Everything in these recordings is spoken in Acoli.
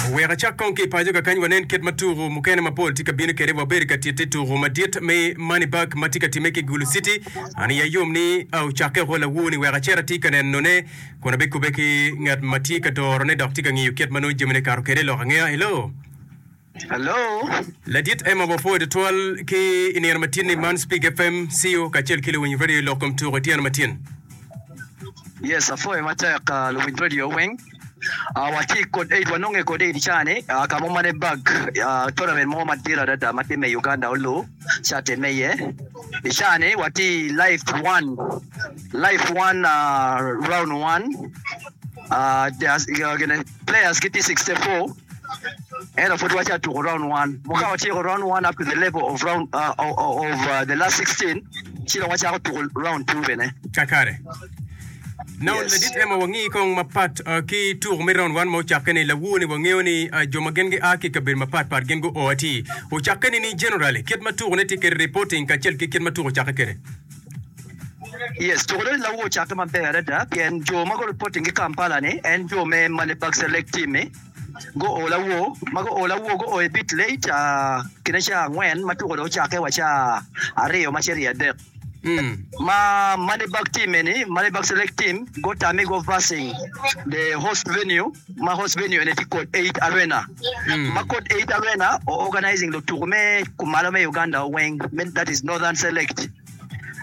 Wek acak kong ki i paco kakany wanen kit ma tuku mukene mapol tye ka bino kede. Wabedo ka titte tuku madit me Money Bag ma tye ka timme ki i Gulu City. An iya yom ni ocakke oko lawu ni wek acit ati ka nenone kun abikubbe ki ngat ma tye ka dorone dok tye ka ngiyo kit ma nongo jamine kato kede i lok angeya. Hello! Hello. Ladit Emma wapwoyo tutwal ki i nino matin ni man Spig FM, Ceo kacel ki luwiny radio lok kom tuko ityeno matin. Yes apwoyo matek luwiny radio weng watye kod Eid wanonge kod Eid ca ni kamo ma ne bag tournament mo madit adada matye me Uganda olu ca time iye i ca ni watye life one life one round one Players gitye sixty four ento pud watye atuko round one mo ka watyeko round one up to the level of round of the last sixteen ci dong wacako tuko round two bene. Kakare. Now Yes. ladit ema wangi kong mapat ah, ki tuko me round one ma ocakke ni lawu ni wangeyo ni ah, jo ma gin gia ki kabedo mapat pat gin gu o atir. Ocakke ni ni generally kit ma tuko ne tye kede reporting kacel ki kit ma tuko ocakke kede. Yes, tuko dong lawu ocakke maber adada pien jo ma gureporting ki Kampala ni en jo me Male Bucks Lake team ni guo lawu ma guo lawu guo a bit late uh, kine ca angwen ma tuko dong ocakke wa ca aryo ma cito i adek. Ma Male Bucks team eni, Male Bucks Lake team gutamme go versing the host venue ma host venue eni tye kod Eight Arena, ma kod Eight Arena o organising lutuku me kumalo me Uganda weng, me that is Northern Select.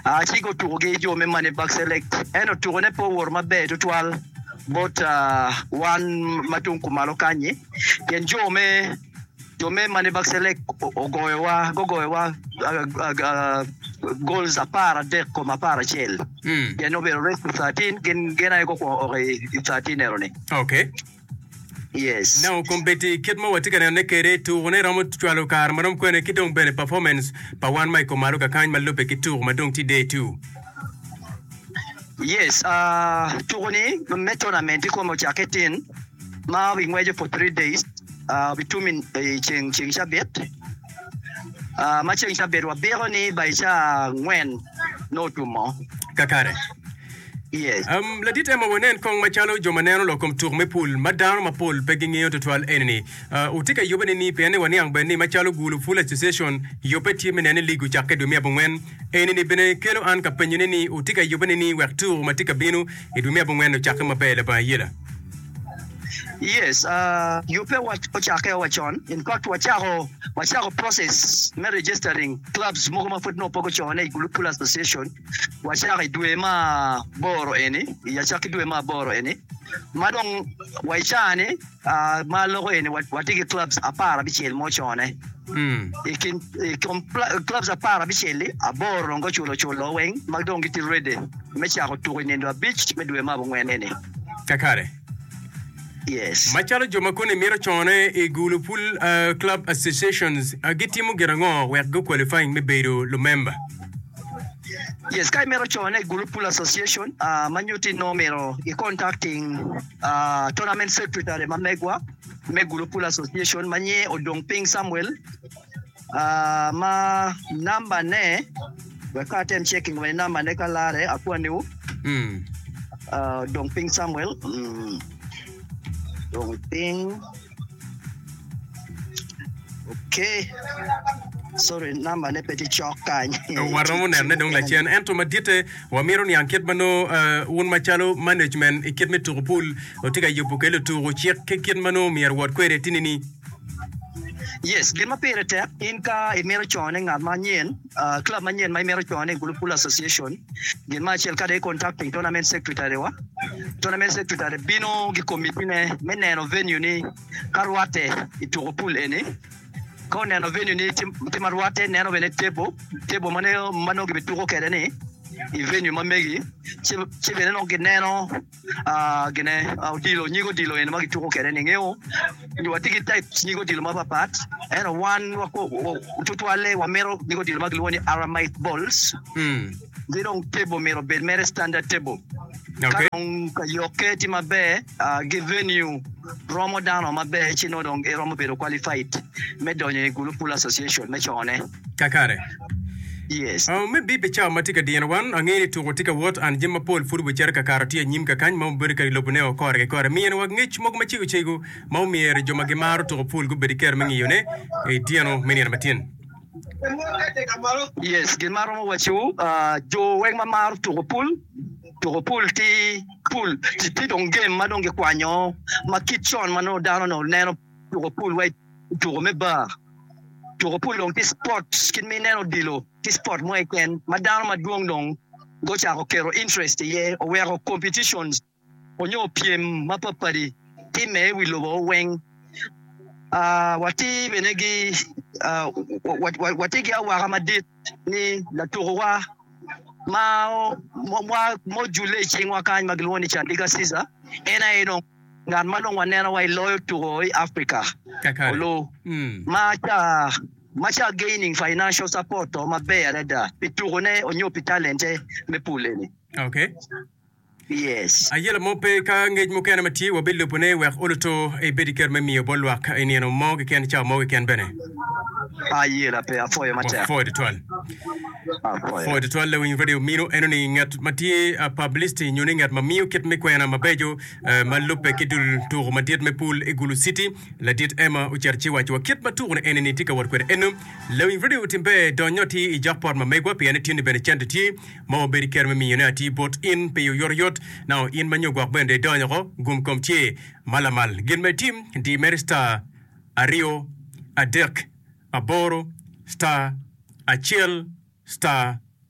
Ah, ci go tuku gi jo me Manirbag Select. Ento tuku ne pe owoto maber tutwal bot ah, wan ma tung kumalo kanyi, pien jo me. Jo me mani Baccelek ogoyowa, gugoyowa goals apar adek kom apar acel. Mm. Pien obedo race to 13, gin gin aye gukwongo oko i i 13 ero-ni. Okay. Yes. Now kombeddi kit ma watye ka nenone kwede tukune romo cwalo kare ma rom kwene ki dong bene performance pa wan ma i kom malo kakany ma lubbe ki tuku ma dong tye day two. Yes, tuku ni me tournament ikome ocakke itin ma obi ngweco for three days, obi tum i ceng ceng cabit ma ceng cabit wa biko ni by ca angwen nongo otumo. Kakare. Yes. Um, ladit Emma wanen kong macalo jo ma neno lok kom tuk me pul ma dano mapol pe gingeyo tutwal enini. Uh, wutye ka yubbe nini? Pien ni waniang bene ni macalo Gulu Pool Association yubbe tye me neno ni lig ocakke dwe me abongwen Enini bene kelo an ka penyone ni, wutye ka yubbe nining wek tuko ma tye ka bino i dwe me abongwen-ni ocakke maber labongo ayela? Yes, yubbe ocakke wa con. In fact, wacako wacako process me registering clubs mogo ma pud nongo pe gucone i Gulu Pool Association. Wacako i dwe me aboro eni, i acakki dwe me aboro eni ma dong wa i caa-ni. ma loko eni watye ki clubs apar abicel ma ocone. I kin i kom pla- clubs apar abicel-li, aboro dong guculo oculo weng ma dong gitye ready me cako tuko i nindo abic me dwe me abongwen eni. Kakare. Yes. Macalo jo ma koni mito cone i gulu pul ah, club associations ah, gitimo gin ango wek gu qualifying me bedo lumemba? Yes, ka imito cone i gulu pul association, ah, ma nyutti nongo myero i contacting Tournament Secretary ma megwa me Gulu Pool Association ma nyinge Odong Piny Samuel ma namba ne wek kong atem checking wene namba ne ka lare akwani wu Odong Piny Samuel Odong Piny Waromo nenone dong lacen. Ento maditte, wamito niang kit ma nongo wun macalo management i kit me tuko pul watye ka yubo kwede lutuko, cik ki kit ma nongo myero wot kwede tinini. Club manyen ma imito cwano ni Gulu Pool Association gin ma acel kadi contacting Tournament Secretary wa. Tournament Secretary bino gi committee ne me neno venue ni ka rwate i tuko pool eni. Ka oneno venue ni tye ma rwate neno bene table, table ma nongo gibituko kwede ni i venue ma megi ci bene nongo gineno gine odilo nyig odilo eni ma kituko kwede ni ngewo nyo watye ki types nyig odilo mapat pat ento wan tutwalle wamito nyig odilo ma kilwongo ni aramaic balls ki dong table myero obed mere standard table ka dong ka yokke tye maber ki venue romo dano maber ci nongo dong iromo bedo qualified me donyo i gulu pool association me cone. kakare. Yes. Oh, me bip i cawa ma tye ka dino wan, angeyo ni tuko tye ka wot, and jami mapol pud wicere kakato tye anyim kakany ma obedo kadi lobo ne o kore ki kore. Miyene wa ngec mogo macego cego ma omyero jo ma gimaro tuko pul gubed ki kero me ngiyo ne i tyeno me nino matyen. Yes, gin ma aromo waci wu, ah, jo weng ma maro tuko pul, tuko pul tye pul, tye dong game ma dong gikwanyo ma kit con ma nongo dano ne oneno. tuko pul wa i tuko me bar. Tuko pul dong tye cipot kit ma ineno odilo, tye cipot mo keken ma dano madwong dong gucako keto interest iye. Oweko competitions nyo pyem mapatpat-ti timme i wi lobo weng. Watye bene ki watye ki awaka madit ni latukowa ma ojule i cingwa kany ma kilwongo ni Chandika Ciza en aye dong ngat ma dong waneno wa i loyo tuko i Africa olu ma ca ma ca gaining financial support to maber adada pi tuko ne onyo pi talente me pule ni. Okay. Yes. Aye lamo pe ka ngec mukene ma tye wa bi lubo ne wek olu to i bedi kero me miyo bol lwak i nino mo gi ken ca mo gi ken bene. Aye la pe afoyo ma tek. Wafoyo tutwal. Afoyo tutwal lawiny radio mino eno ni ngat ma tye a publicity nyo ni ngat ma miyo kit me kwena mabejo Ma lubbe ki dul tuko madit me pool i Gulu City, ladit Emma ocito ci owaco wa kit ma tuko ni eni-ni tye ka wot kwede. Eno, lawiny redio otimbe donyo atir i jok pot ma megwa pien eti ni bene cente tye ma wabedo i kero me miyone atir bot in pi oyotoyot. Nao in ma nyo gwok bene idonyo oko, gum kom ce ma lamal. Gin ma itim, di mere star aryo adek aboro star acel star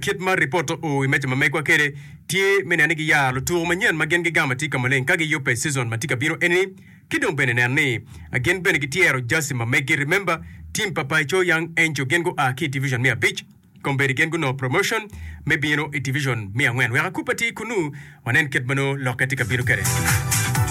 Kit ma ripot oa i meja ma megwa kwede tye me neno ni giyaro lutuku manyen ma gin gigamo atika maleng ka giyubbe i cizon ma tye ka bino eni-ni, ki dong bene neno ni gin bene gityero jaci ma meggi. Remember, tim pa Paco Young Angel gin gua ki i Division me abic, kombeddi gin gunongo promotion me bino i Division me angwen. Wek akupe atir kunnu, wanen kit ma nongo lokke tye ka bino kwede.